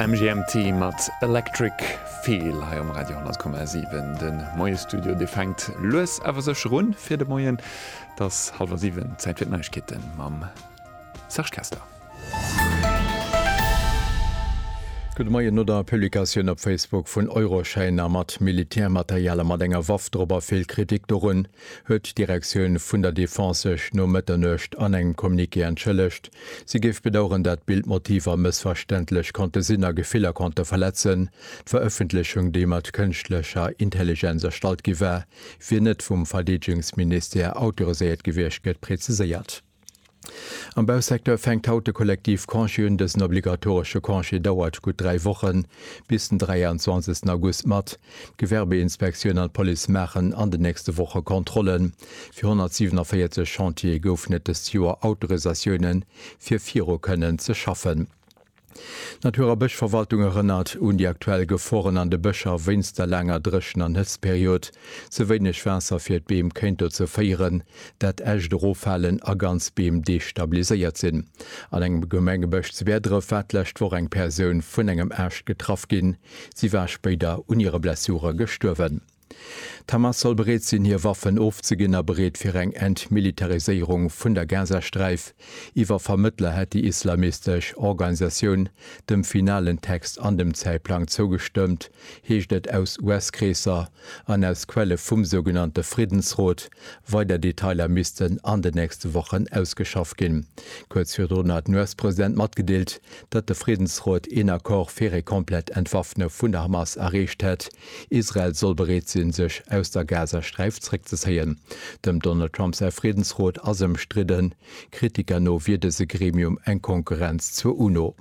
MGMT mat Electric Feel hei um Radio 10,7. De Moie-Studio, dee fänkt lues awer sécher un fir de Moien. Et ass hallwer siwen, Zäit fir d'Neiegkeete mam Serge Kessler. Gudde Moien. No der Publikatioun op Facebook vun Euroschäiner mat Militärmaterial a mat enger Waff drop a vill Kritik dorun, huet d'Direktioun vun der Defense sech no Mëtternuecht an engem Communiqué entschëllegt. Si géif bedauern, dat d'Bild Motiver mëssverständlech konnte sinn a Gefiller konnte verletzen. D'Verëffentlechung, déi mat kënschtlecher Intelligenz erstallt gi war, wier net vum Verdeedegungsministère autoriséiert gewiescht, gëtt preziséiert. Am Bausecteur fänkt haut de Kollektiv Congé un. Dësen obligatoresche Congé dauert gutt dräi Wochen, bis den 23 August mat. D'Gewerbeinspektioun an d'Police maachen an den nächste Woche Kontrollen. Fir 147 Chantiere goufen et dëst Joer Autorisatioune fir viru kënnen ze schaffen. D'Natur a Bëschverwaltung erënnert un déi aktuell Geforen an de Bëscher wéinst der laanger Dréchen an Hëtztperiod. Ze wéineg Waasser fir d'Beem kéint dozou féieren, dat Äscht eroffalen a ganz Beem destabiliséiert sinn. An engem Gemengebësch zu Bäerdref war d'lescht Woch eng Persoun vun engem Aascht getraff ginn. Si war spéider un hire Blessure gestuerwen. D'Hamas soll bereet sinn, hir Waffen ofzeginn a bereet fir eng Entmilitariséierung vun der Gazasträif. Iwwer Vermëttler hätt déi islamistesch Organisatioun dem finalen Text an dem Zäitplang zougestëmmt, heescht et aus US-Kreesser an aus Quelle vum sougenannte Friddensrot. Weider Detailer missten an den nächste Wochen ausgeschafft ginn. Kuerz virdrun hat den US-President matgedeelt, datt de Friddensrot een Accord fir ee komplett Entwaffne vun der Hamas erreecht hätt. Israel soll bereet sinn, sech aus der Gazasträif zréckzezéien. Dem Donald Trump säi Friddensrot ass ëmstridden. Kritiker no wier dëse Gremium eng Konkurrenz zur UNO.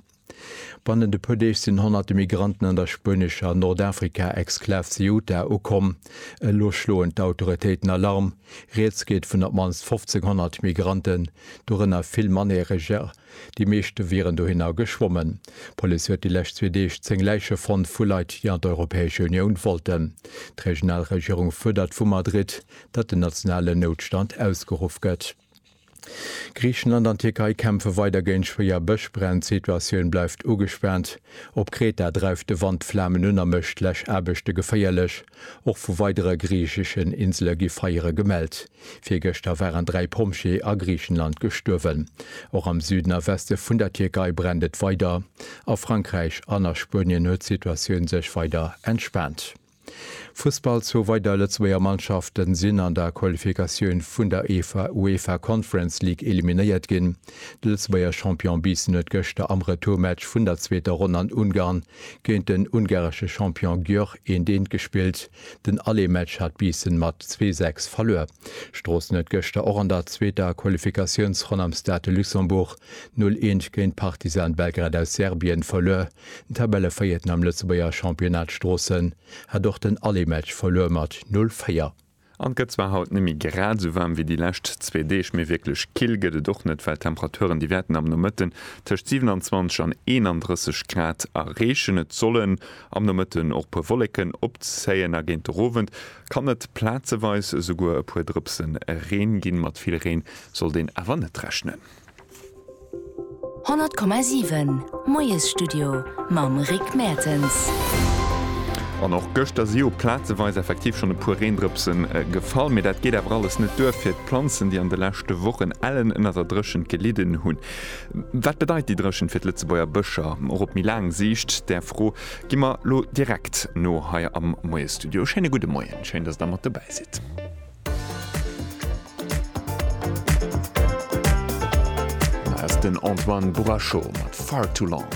Bannent e puer Deeg sinn honnerte Migranten an der spuenescher Nordafrika-Exklav Ceuta ukomm. Elo schloen d'Autoritéiten Alarm. Rieds geet vun op d'mannst 1.500 Migranten, dorënner vill Mannereger, Déi meeschte wieren dohinner geschwommen. D'Police huet déi lescht zwee Deeg zéng Läiche fonnt vu Leit, déi an d'Europäesche Unioun wollten. D'regional Regierung fuerdert vu Madrid, datt den nationalen Noutstand ausgeruff gëtt. Griichenland an d'Tierkei kämpfe weider géint schwéier Bëschbränn. D'Situatioun bleift ugespaant. Op Kreta dreift de Wand d'Flamen un a mécht d'Läschaarbechte geféierlech. Och vu weidere griicheschen Insele gi Feiere gemellt. Virgëschter waren dräi Pompjeeë a Griichenland gestuerwen. Och am Süden a Weste vun der Tierkei brennt et weider. A Frankräich an a Spuenien huet d'Situatioun sech weider entspaant. Fussball, Zwou weider Lëtzebuerger Mannschafte sinn an der Qualifikatioun vun der UEFA Conference League eliminéiert ginn. De Lëtzebuerger Champion Biissen huet gëschter am Retourmatch vun der zweeter Ronn an Ungarn géint den ungaresche Champion Győr 1, 1 gespillt. Den Allemaetsch hat Biissen mat zwee 6 verluer. Stroossen huet gëschter och an der zweeter Qualifikatiounsronn am Stade de Luxembourg 0 Eent géint Partizan Belgrad aus Serbien verluer. Den Tabellevéierten am Lëtzebuerger Championnat Stroossen hat och den Allemaetsch verluer mat 0 4. An et gëtt zwar haut net méi grad esou waarm wéi déi lescht zwee Deeg, mee wierklech kill gëtt et och net, well d'Temperaturen déi wäerten am Nomëtten tëscht 27 an 31 Grad erreechen. Et sollen. Am Nomëtten och puer Wolleken opzéien a géint de Rowend kann et plaatzeweis esouguer e puer Drëpsen Reen ginn. Mat vill Reen sollt een awer net rechnen. 100,7 Moiesstudio mam Rick Mertens. An och gëschter si jo plaatzeweis effektiv schonn e puer Reendrëpse gefall. Mee dat geet awer alles net duer fir d'Planzen, déi an de leschte Wochen ellen ënner der Dréchent gelidden hunn. Wat bedeit déi Dréchent fir d'Lëtzebuerger Bëscher och op méi laang Siicht? Där Fro gi mer lo direkt no hei am Moiestudio. Schéine gudde Moien, schéin dass der mat dobäi sidd. Hei ass den Antoine Bourachot mat Far Too Long.